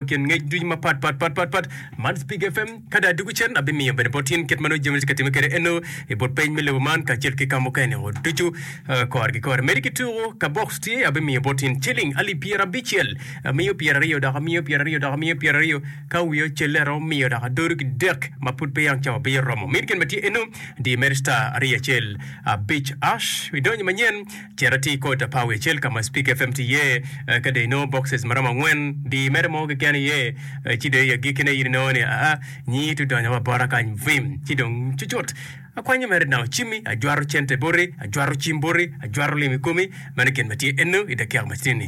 I kin ngec ducu mapat pat pat pat pat man Speak FM ka dong adwogo cen abimiyo bene bot in kit ma nongo jami weng tye ka timme kwede eno i but peny me lobo man kacel ki ka mukene o ducu eh, kore ki kore. Medi ki tuku ka box tye abimiyo bot in ciling alip pyera abicel amiyo pyera aryo dok amiyo pyera aryo dok amiyo pyera aryo ka wiye ocelle aromo miyo dok adodo ki dek ma pud pe yang cawa pe oromo. Medi gin ma tye eno diyo mere star aryo acel abic ash idonyo manyen Cit ati i kota pa Wecel ka ma Spik FM tye iye. Ka dong inongo bokces ma romo angwen, di i mere mo keken iye, ci dong i agikkine in inongo ni, Aa, nyi itu donyo wa bota kany! Vim! Ci dong cucut akwanyo mere nang ocimmi, ajwato cente boti, ajwato cim boti, ajwato lim i komi. Meno gin ma tye ennu i dakika matinni.